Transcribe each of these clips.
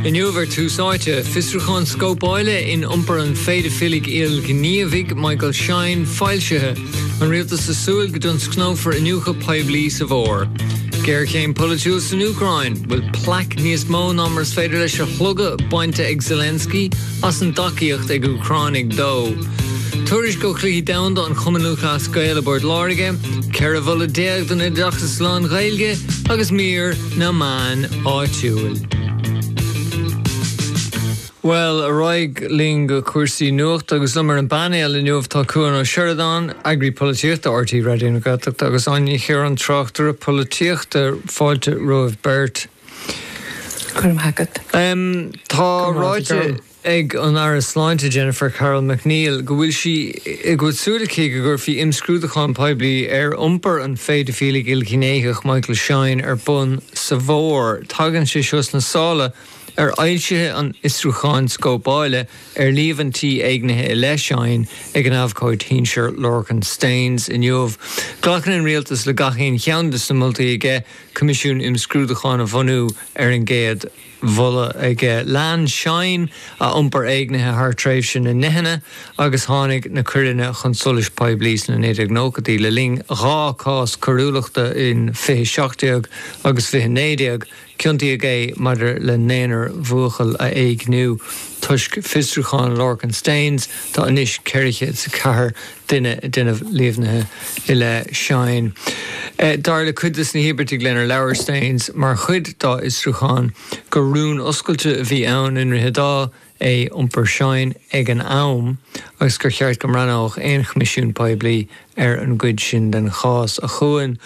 Inniu ar Tús Áite, fiosrúchán scóipeála in iompar an pheidifiligh ilghníomhaigh Michael Shine foilsithe, An Rialtas ag Súil go dtionscnófar Iniúchadh Poiblí sa bhFómhar, Géarchéim Polaitiúil san Úcráin, Bhfuil plaic níos mó ná mar is féidir leis a shlogadh bainte ag Zelensky as an dtacaíocht ag Úcránaigh dó? Tuairisc ó Chluichí Domhanda an Chumainn Lúthchleas Gael i bPort Láirge, 14 mholadh don oideachas lán-Ghaeilge, agus mír na meán áitiúil. Bhuel, ar aghaidh linn go cúrsaí nuachta agus liom ar an bpainéal inniu tá Cuan Ó Seireadáin, Eagraí Polaitíochta RTÉ Raidió na Gaeltachta agus Áine Ní Chiaráin, Tráchtaire Polaitíochta. Fáilte romhaibh beirt. Go raibh maith agat. Tá ráite ag an Aire Sláinte Jennifer Carroll MacNeill go bhfuil sí go bhfuil súil aici go gcuirfí imscrúdúchán poiblí ar iompar an phéidifíligh ilghnéitheach Michael Shine ar bun sa bhFómhar. Tagann sé seo sna sála ar fhoilsithe an fhiosrúcháin scóipeáile ar líomhaintí éignithe i leith Shine ag an abhcóid shinsir Lorcan Staines inniu. Glacann an Rialtas le gach aon cheann de sna moltaí aige coimisiún imscrúdúcháin a bhunú ar an gcéad mholadh aige. Lean Shine a iompar éignithe thar tréimhse na ndeicheanna agus tháinig na coireanna chun solais poiblí sna 1990idí le linn dhá chás coiriúlachta in 2017 agus 2019. Ciontaíodh é maidir le naonúr bhuachaill a éigniú. Toisc fiosrúchán Lorcan Staines, tá anois 404 duine ag déanamh líomhnaithe i leith Shine. Dar le cuid de sna híobartaigh lenar labhair Staines mar chuid dá fhiosrúchán gur rún oscailte a bhí ann i nDroichead Átha é iompar Shine ag an am agus gur cheart go mbreathnódh aon choimisiún poiblí ar an gcuid sin den chás a Chuain,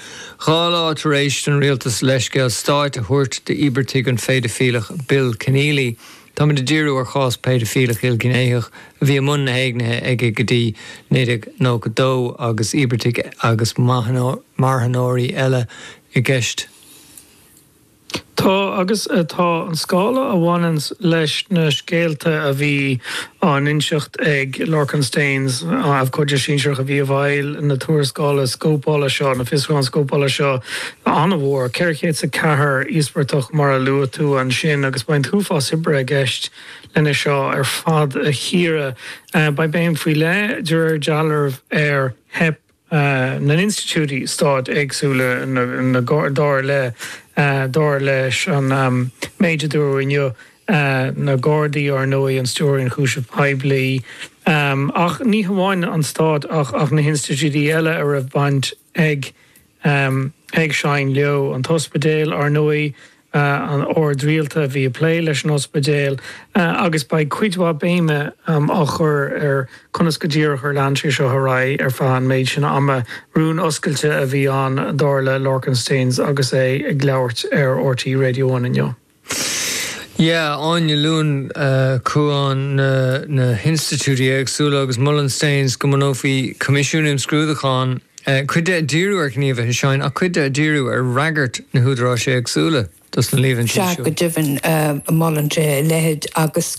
dhá lá tar éis don rialtas leithscéal stáit a thabhairt d'íobartaigh an phéidifíleach Bill Kenneally. Táimid ag díriú ar chás péidifileach ilghnéitheach a bhí i mbun na héignithe aige go dtí 1992 agus íobartaigh agus marthanóirí eile i gceist. Tá agus tá an scála a bhaineann leis na scéalta a bhí á n-inseacht ag Lorcan Staines, abhcóide sinsearach a bhí i bhfeighil na tuarascála scóipeála seo, na fiosrúcháin scóipeála seo, an-mhór, 404 íospartach mar a luaigh tú ansin, agus beidh an t-uafás oibre i gceist lena seo ar fad a chíoradh. Beidh béim faoi leith, de réir dealraimh, ar theip na n-institiúidí stáit éagsúla, dar le, dar leis an méid a dúradh inniu, na Gardaí, ar ndóigh, an Stiúrthóir Ionchúiseamh Poiblí, ach ní hamháin an stát ach na hinstitiúidí eile a raibh baint, ag ag Shine leo. An tOspidéal, ar ndóigh, an Ord Rialta a bhí ag plé leis an Ospidéal agus beidh cuid mhaith béime á chur ar conas go díreach ar lean sé seo ar aghaidh ar feadh an méid sin ama. Rún oscailte a bhí ann, dar le Lorcan Staines agus é ag labhairt ar RTÉ Radio One inniu. Yeah, Áine, luann Cuán na hinstitiúidí éagsúla agus molann Staines go mbunófaí coimisiún imscrúdúcháin, cuid de ag díriú ar ghníomhartha Shine ach cuid de ag díriú ar fhreagairt na húdaráis éagsúla dos na líomhaintí seo. Sea, go deimhin, molann sé a leithéid agus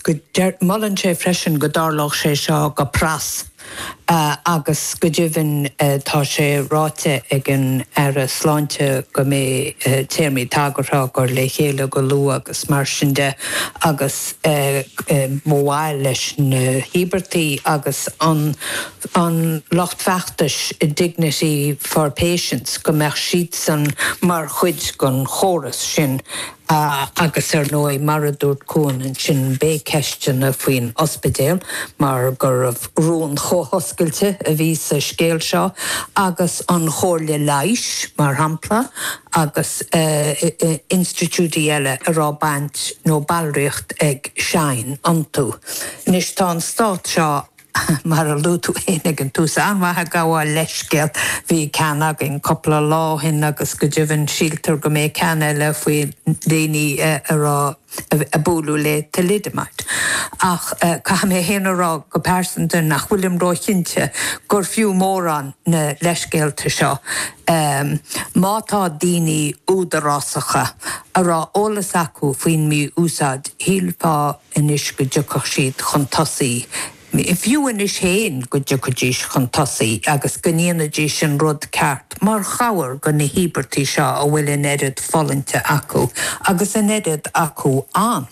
molann sé freisin go dtarlódh sé seo go pras. agus go deimhin tá sé ráite ag an Aire Sláinte go mbeidh téarmaí tagartha á gcur le chéile go luath agus mar sin de agus ba mhaith leis na híobartaigh agus an lucht feachtais Dignity for Patients go mbeadh siadsan mar chuid den chóras sin. a agus ar ndóigh, mar a dúirt Cuán ansin, beidh ceisteanna faoin ospidéal mar gurbh rún chomh hoscailte a bhí sa scéal seo agus an chomhairle leighis, mar shampla, agus institiúidí eile a raibh baint nó ballraíocht ag Shine iontu. Anois, tá an stát seo Mar a luaigh tú fhéin ag an tús, an-mhaith ag gabháil leithscéal, bhí ceann againn cúpla lá ó shin agus go deimhin síltear go mbeidh ceann eile faoi dhaoine a raibh, a buaileadh le Thalidomide. Ach caithfidh mé fhéin a rá go pearsanta nach bhfuilim ró-chinnte gur fiú mórán na leithscéalta seo. Má tá daoine údarásacha a raibh eolas acu faoin mí-úsáid, shílfeá, anois go dtiocfadh siad chun tosaigh, fiú anois féin go dtiocfaidís chun tosaigh agus go ndéanfaidís an rud ceart mar chabhair do na híobartaigh seo a bhfuil an oiread fulaingthe acu, agus an oiread acu ann.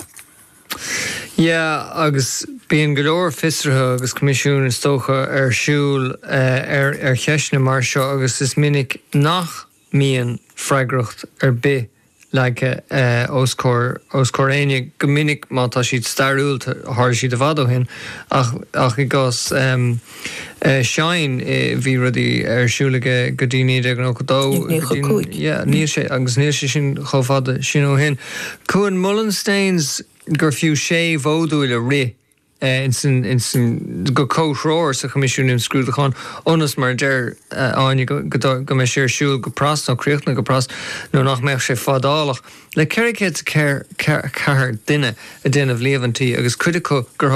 Yeah agus bíonn go leor fiosruithe agus coimisiúin is dócha ar siúl ar cheisteanna mar seo agus is minic nach mbíonn freagracht ar bith leagtha os comhair éinne, go minic má tá siad stairiúil, tharla siad i bhfad ó shin, ach i gcás Shine bhí rudaí ar siúl aige go dtí 1992, níl sé agus níl sé sin chomh fada sin ó shin. Cuán, molann Staines gur fiú sé mhodúl a rith insan go comhthreomhar sa Choimisiún Imscrúdúcháin, ionas, mar a deir Áine, go mbeidh sé ar siúl go pras, nó críochnaithe go pras, nó nach mbeadh sé fadálach le 404 duine ag déanamh líomhaintí, agus cuid acu gur